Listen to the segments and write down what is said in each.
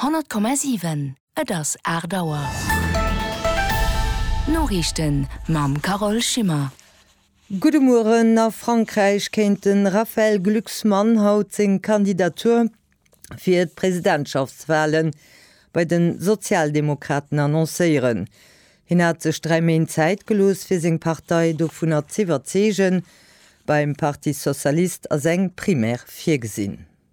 100,7 Et ass 8 Auer. D'Noriichten mam Carole Schimmer. Gudde Mueren. A Frankräich kéint de Raphaël Glucksmann haut seng Kandidatur fir d'Presidentschaftswale bei de Sozialdemokraten annoncéieren. Hien hat sech dräi Méint Zäit gelooss, fir seng Partei dovunner z'iwwerzeegen. Beim Parti socialiste ass eng Primaire virgesinn.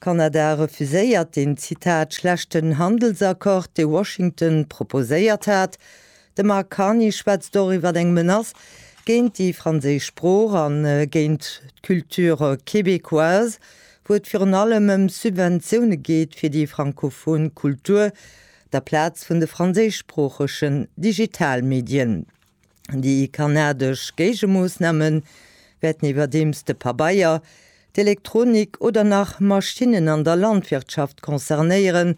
Kanada refuséiert den, Zitat, schlechten Handelsaccord, dee Washington proposéiert hat. De Mark Carney schwätzt och iwwer eng Menace géint déi franséisch Sprooch a géint d'Culture québécoise, wou et virun allem ëm Subventioune geet fir déi frankophon Kultur, der Plaz vun de franséischsproochegen Digitalmedien. Déi kanadesch Géigemoossname wäerten iwwerdeems de Pabeier, d'Elektronik oder nach Maschinnen an der Landwirtschaft concernéieren.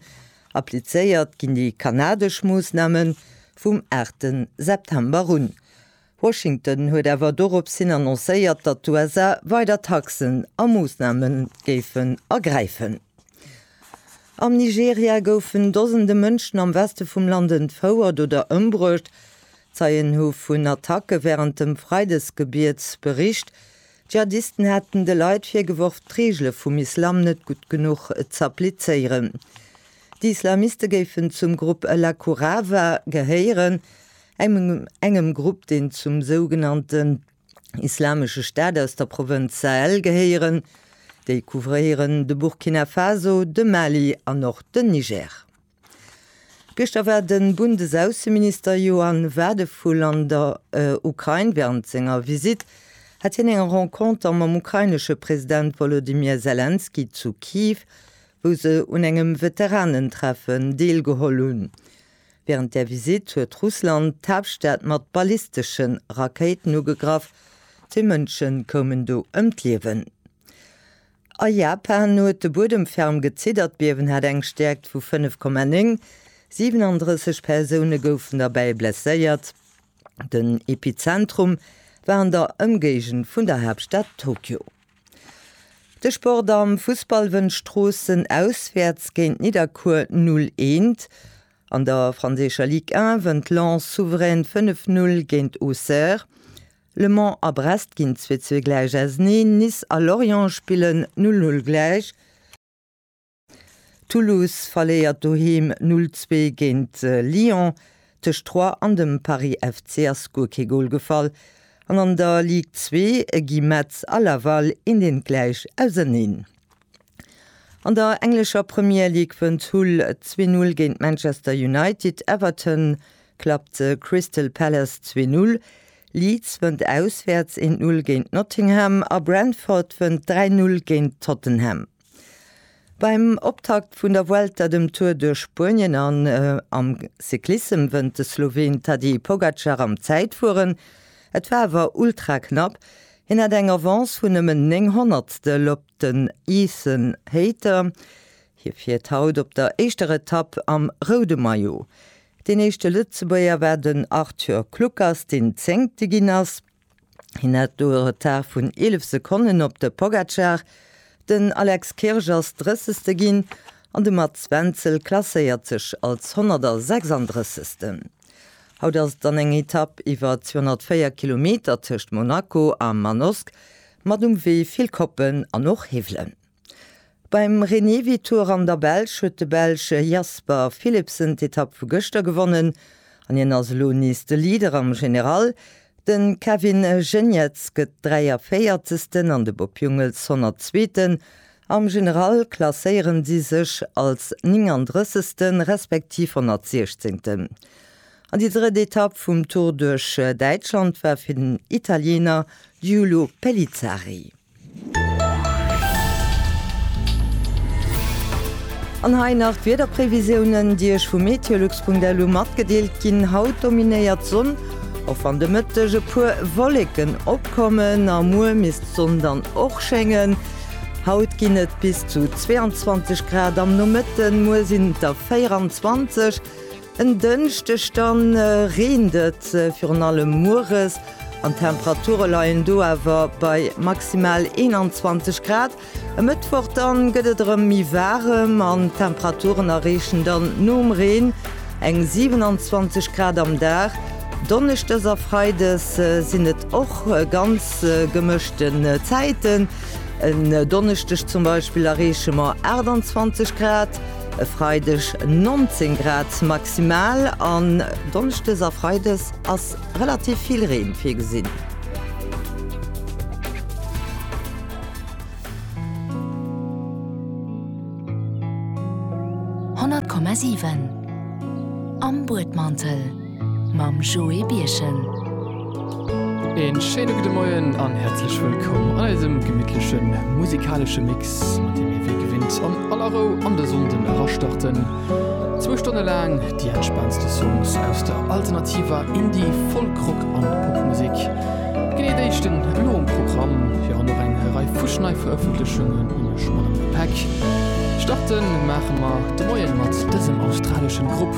Applizéiert ginn déi kanadesch Moossname vum aachte September un. Washington huet awer dorops hin annoncéiert, datt d'USA weider Taxen a Moossname géifen ergräifen. Am Nigeria goufen Dosende Mënschen am Weste vum Land entfouert oder ëmbruecht, Zeien hu vun Attacke wärend dem Freidesgebiet bericht. Dschihadisten hätten de Leit virgeworf, d'Reegele vum Islam net gutt genuch z'applizéieren. Déi Islamiste géifen zum Grupp La Kurava gehéieren, engem Grupp, deen zum sougenannten Islamesche Staat aus der Provënz Sahel gehéieren. Déi couvréieren de Burkina Faso, de Mali an och den Niger. Gëschter war de Bundesaußenminister Johann Wadephul an der Ukrain. Wärend senger Visitt hat hien eng Renconter mam ukrainesche President Wolodymyr Selenskyj zu Kyiv, wou se un engem Veteranentreffen deelgeholl hunn. Wärend där Visitt huet Russland d'Haaptstad mat ballistesche Rakéiten ugegraff, zwee Mënsche koumen do ëm d'Liewen. A Japan huet de Buedem ferm geziddert, d'Biewen hat eng Stäerkt vu 5,9. 37 Persoune goufen derbäi blesséiert. Den Epizentrum war an der Ëmgéigend vun der Haaptstad Tokio. De Sport am Fussball wënnt Stroossen auswäerts géint Nidderkuer 0 Eent. An der franséischer Ligue 1 wënnt Lens souverän 5 Null géint Auxerre. Le Mans a Brest ginn zweetzwee gläich auserneen, Nice a Lorient spillen null null gläich, Toulouse verléiert doheem null zwee géint Lyon, tëscht Troyes an dem Paris FC ass guer kee Gol gefall an an der Ligue zwee gi Metz a Laval eent eent gläich auserneen. An der englescher Premier League wënnt Hull zwee Null géint Manchester United, Everton klappt Crystal Palace zwee Null, Leeds wënnt auswäerts eent Null géint Nottingham a Brentford wënnt dräi Null géint Tottenham. Beim Optakt vun der Vuelta, dem Tour duerch Spuenien an am Cyclissem wënnt de Sloween Tadej Pogacar am Zäitfueren. Et war awer ultra knapp, hien hat eng Avance vun nëmmen néng Honnertstel op Den Ethan Hayter, hie fiert haut op der éischter Etapp am roude Maillot. Deen éischte Lëtzebuerger war den Arthur Kluckers, deen Zéngte ginn ass. Hien hat do e Retard vun 11 Sekonnen op de Pogacar. Den Alex Kirsch ass Drëssegste ginn an de Mats Wenzel klasséiert sech als 136. Haut ass et dann eng Etapp iwwer 204 Kilometer tëscht Monaco a Manosque, mat um Wee vill Koppen an och Hiwwelen. Beim Renewi-Tour an der Belsch huet de Belsch Jasper Philipsen d'Etapp vu gëschter gewonnen an hien ass elo nees de Leader am General. De Kevin Geniets gëtt 43. an de Bob Jungels 102. Am General klasséieren si sech als 39. respektiv 116. An déi drëtt Etapp vum Tour duerch Däitschland war fir den Italiener Giulio Pellizzari. An hei nach d'Wiederprevisiounen, déi Iech vu meteolux.lu matgedeelt ginn. Haut dominéiert d'Sonn, och wann de Mëtteg e puer Wolleken opkommen. A muer misst d'Sonn dann och schéngen. Haut ginn et bis zu 22 Grad am Nomëtten, muer sinn et der 24. En Dënschdeg da reent et virun allem mueres an d'Temperature leien do awer bei maximal 21 Grad. E Mëttwoch da gëtt et erëm méi waarem an d'Temperaturen erreechen dann nom Reen eng 27 Grad am Dag. Donneschdes a Freides sinn et och ganz. trotz gemëschten Zäiten. En Donneschdeg zum Beispill erreeche mer 28 Grad, e Freideg 19 Grad maximal an Donneschdes a Freides ass relativ vill Reen virgesinn. mam Joé Birchen. Een schéine gudde Moien an häerzlech wëllkomm an eisem gemittlechen musikalesche Mix, mat deem mir wéi gewinnt an aller Rou an de Sonnden erastarten. Zwou Stonne laang déi entspaantste Songs aus der alternativer Indie-, Folk-, Rock an Popmusek. Genee déi stinn elo um Programm, virun och eng Rei fuschneiverëffentlechungen um schmalen Gepäck. Starten maache mer de Moien mat dësem australeschen Grupp.